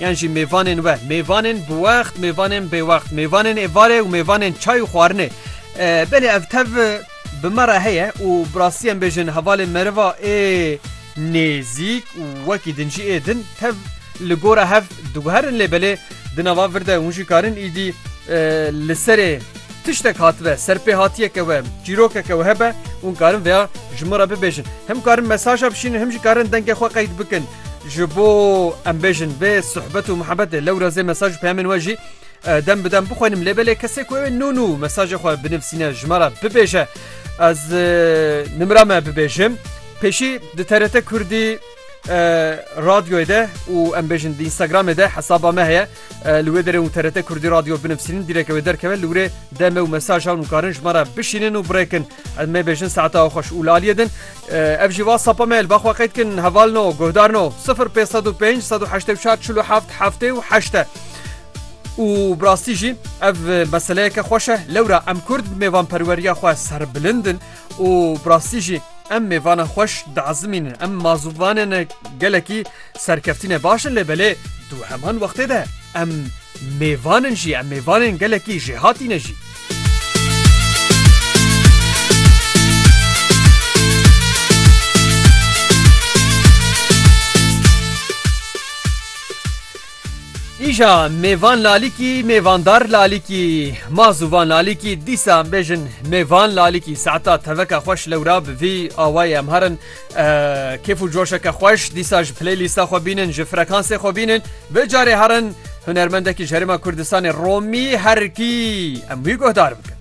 Yan jî mêvanên we, mêvanên bi wext, mêvanên bêwext, mêvanên êvarê û mêvanên çay û xwarinê. Belê ev tev bi me re heye û bi rastî em bêjin hevalên meriva ê nêzîk û wekî din jî ê din tev li gora hev diguherin lê belê di nava vir de hûn jî karin îdî li serê tiştek hatibe serpêhatiyeke we çîrokeke we hebe hûn karin vêya ji min re bibêjin. Him karin mesaja bişînin him jî karin dengê xwe qeyd bikin. Ji bo em bêjin vê sohbet û muhebetê lewra zê mesaj û peyamên we jî dem bi dem bixwînim lê belê kesê ku ew nû nû mesajê xwe binivîsîne ji me re bibêje ez nimra me bibêjim pêşî di TRT Kurdî radyoyê de û em bêjin di Instagramê de hesaba me heye li wê derê û TRT Kurdî radyo binivîsînin dîreke wê derkeve li wê demê û mesajan û karin ji me re bişînin û birêkin Ez mêbêjin saeta xwe xweş û li aliyê din. Ev jî va sapa me li ba xwe qeyd kin heval no guhdar no 0505 184 47 heftê û heşte. û birastî jî ev meseleyeke xweş e lewra em kurd mêvan perweriya xwe serbilindin û birastî jî em mêvana xweş diezimînin em mazûvanê gelekî Serkeftinê baş in lê belê du heman wextê de em mêvan in jî em mêvanên gelekî jêhatî ne jî. Îja mêvan lalîkî mêvandar lalîkî ma zûvan lalîkî dîsa em bêjin mêvan lalîkî saeta teveka xweş lewra bi vî awayê em herin. Kêf û coşeke xweş dîsa ji playlîsta xwe bînin ji frekansê xwe bînin bi carê herin hunermendekî ji herêma Kurdistanê Romî herkî em wî guhdar bikin.